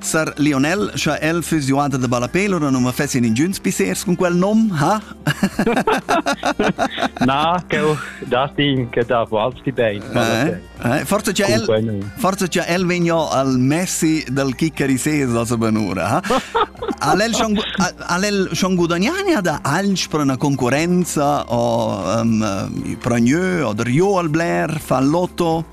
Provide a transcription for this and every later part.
Sar Lionel, scha el füss giuada da ballapé, lura non ma fessien ingüns pissers cun quel nom, ha? Na, ch'eu dastin che da valschi bein. Eh? Eh? Forza cha el, forza cha el vegna al Messi dal chiccarisés da sa benura, ha? Al el schon, al el schon gudagnania da alch per una concorrenza o um, pro gneu o der jo al Blair, fa lotto?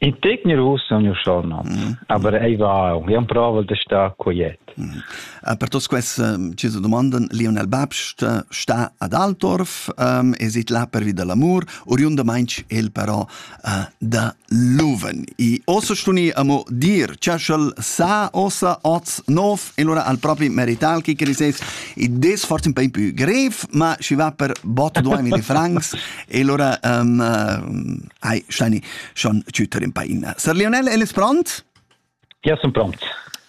In tegner ussa ha miu surnum, aber ei va aunc emprovel da star quiet. Per tots quests tgesa domanden Lionel Babst sta ad Altdorf e sit là pervi da l'amur, oriundamaintg el però da Luven. I ossa stuni amo dir, chaschel sa ossa oz nov, e lura al propi merital chi criseis, i des forse un peu più grev, ma schi va per botto duemi di francs, e lura um, Ei, Steini, schon tschütter in paina. Sir Lionel, el ist pront? Ja, sunt pront.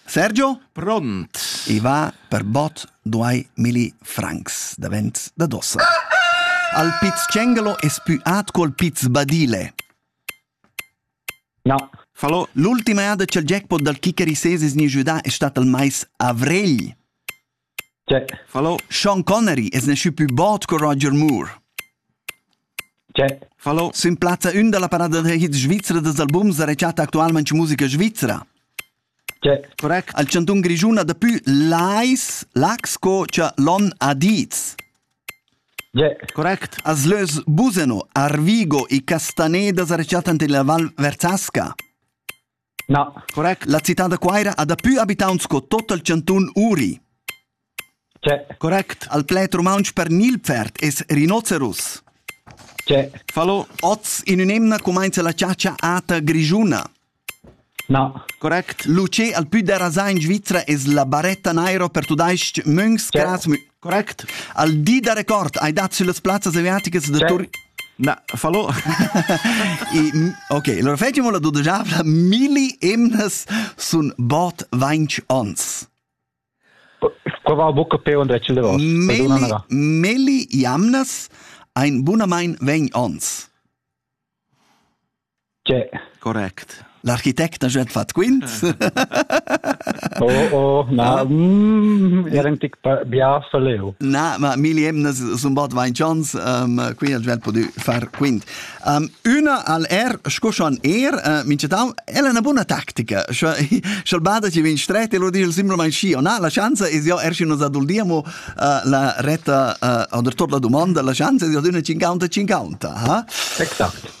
Sergio? Pront. I va per bot duai milli francs davent da dossa. Al piz cengelo es più at col piz badile. No. Fallo, l'ultima ada ch'el jackpot dal kicker i seses ni giudà è stat il mais avrigl. Tgei? Fallo, Sean Connery es nasciu plü bod co Roger Moore. Tgei? Fallo, s'implazza ün da la parada da hit svizra dals albums rechatta actualmaing musica svizra. Tgei? Correct. Al chantun Grischun ha dapü Lais, Lax co cha l'on ha dits. Tgei? Correct. As lös Buseno, Arvigo e Castaneda sa rechattan illa Val Verzasca. Na. Correct. La citad da Cuira ha daplü abitaunt sco tot il chantun Uri. C'è. Correct. Al pled rumauntsch per Nilpferd es rinoceros. C'è. Fallo. Oz in ün'emna cumainza la chatscha ata grischuna. Na. Correct. Luce al pü derasà in Svizra es la baretta naira per tudais-ch münchs, cras, Correct. Al di da record hai dat sulle plazzas asiatiche da Tur Na, fallo. I, ok, allora fetimo la dodojavla, milli emnas sun bot vainch ons. Provar buca pe und recel davos. Melli, melli jamnas ein bunamain vegn ons. Correct. L'architect ha già fatg quint. Oh, oh, na, mm, era un tic bia leu. Na, ma milli emnas sun bot vain chans, um, quindi ha già podu far quint. Um, una al er, sco schon er, uh, mincetau, è una buona tattica. Sch'el bada ci vin stret e lo dice simplesmente sci, o na, la chance es io er si nos aduldiamo uh, la retta uh, o der tot la domanda, la chance es io d'una 50-50, ha? Exakt.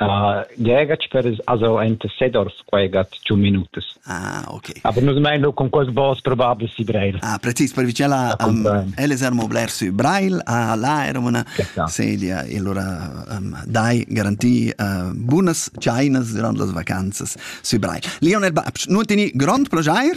Uh, Gägatsch per es also enta Sedorf quaigat giù minutas. Ah, ok. Aber nus mein lu con quels boss probabel si Breil. Ah, precis per vicino a elle sermo bler su Breil a là era una sedia e allora um, dai garanti uh, bunas chinas durant las vacanzas su Breil. Leonard Babsch, nun teni grond plagier